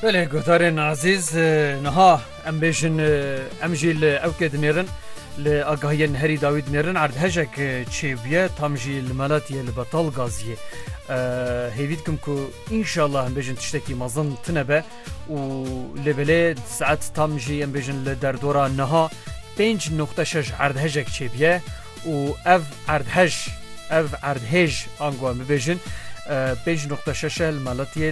Belê guhdarên azîz niha em bêjin em jî li ewkê dinêrin li agahiyên herî dawî dinêrin erdhejek çêbûye tam jî li melatiyê li betal gaziyê hêvî dikim ku înşallah em bêjin tiştekî mezin tune be û lê belê saet tam jî em bêjin li derdora niha 5.6 erdhejek çêbûye û ev erdhej, ev erdhêj ango em bibêjin pênc noqta şeş e li Malatiyê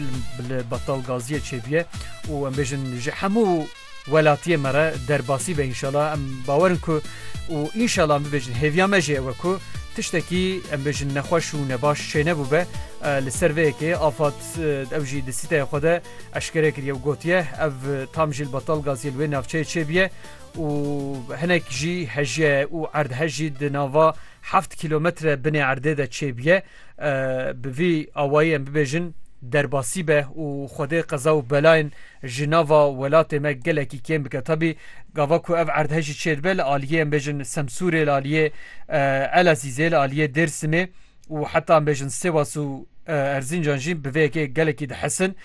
li Batal Gaziyê çêbûye û em bêjin ji hemû welatiyê me re derbasî be înşala em bawer in ku û înşala em bibêjin hêviya me jî ew e ku tiştekî em bêjin nexweş û nebaş çênebû be li ser vê yekê afad ew jî di sîteyê xwe de eşkere kiriye û gotiye ev tam jî li Batal Gaziyê li wê navçeyê çêbûye û hinek jî hejye û erdhe jî di nava heft kîlometre binê erdê de çêbûye. Bi vî awayî em bibêjin derbasî be û xwedê qeza û belayên ji nava welatê me gelekî kêm bike. Tabî gava ku ev erdhe jî çêdibe li aliyê em bêjin Semsûrê, li aliyê Elezîzê, li aliyê Dêrsimê, û heta em bêjin Sêwas û Erzîncan jî bi vê yekê gelekî dihesin.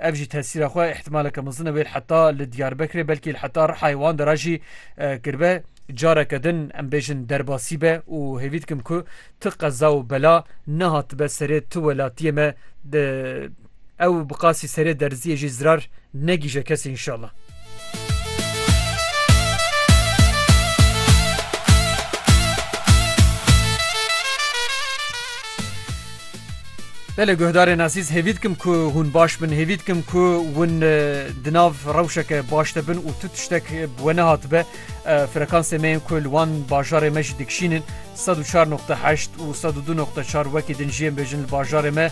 Ev jî tesîra xwe îhtimaleke mezin e wê li heta li Diyarbekirê belkî li heta Rihayê wan de re jî kiribe. Careke din em bêjin derbasî be û hêvî dikim ku tu qeza û bela nehatibe serê tu welatiyê me Ew bi qasî serê derziyê jî zirar negîje kesî înşallah. Belê guhdarên ezîz hêvî dikim ku hûn baş bin hêvî dikim ku hûn di nav rewşeke baş de bin û tu tiştek bi we nehatibe frekansê me yên ku li wan bajarê me jî dikişînin 104.8 û 102.4 wekî din jiyên bêjin li bajarê me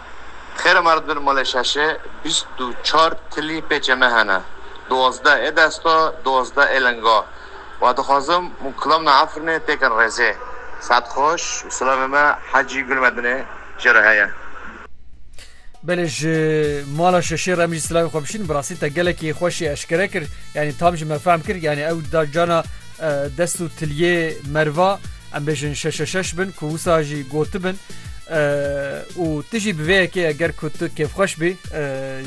Xêre ma re di bin malê şeşê bîst û çar tilî pêçê me hene. Duwazdeh ê desta, duwazdeh ê linga. Wa dixwazim û kilam na Efrînê têkin rêzê. Saet xweş û silamê me Hecî Gulmedinê jê re heye. Belê ji mala şeşê re em jî silavê xwe bişînin. Bi rastî te gelekî xweşê eşkere kir. Yanî tam ji me fehm kir. Yanî ew da cana dest û tiliyê merva. Em bêjin şeşe şeş bin ku wisa jî gotibin û tu jî bi vê yekê eger ku tu kêfxweş bî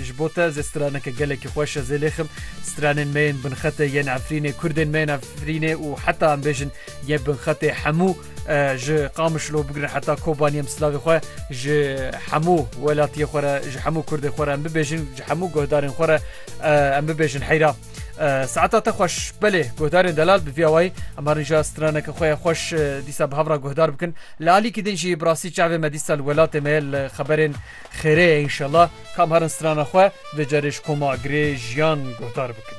ji bo te zê straneke gelekî xweş e zê lêxim stranên me yên binxetê yên Efrînê Kurdên me yên Efrînê û heta em bêjin yê binxetê hemû ji Qamişlo bigirin heta Kobanî em silavê xwe ji hemû welatiyê xwe re ji hemû Kurdê xwe re em bibêjin ji hemû guhdarên xwe re em bibêjin heyra. Saeta te xweş belê guhdarên delal bi vîya wayî ema rîja straneke xwe ye xweş dîsa bi hevra guhdar bikin. Li alîkî din jî bi rastî çavê me dîsa li welatê me ye li xeberên xêrê ye înşela. Kam herin strana xwe vê carê ji koma girê jiyan guhdar bikin.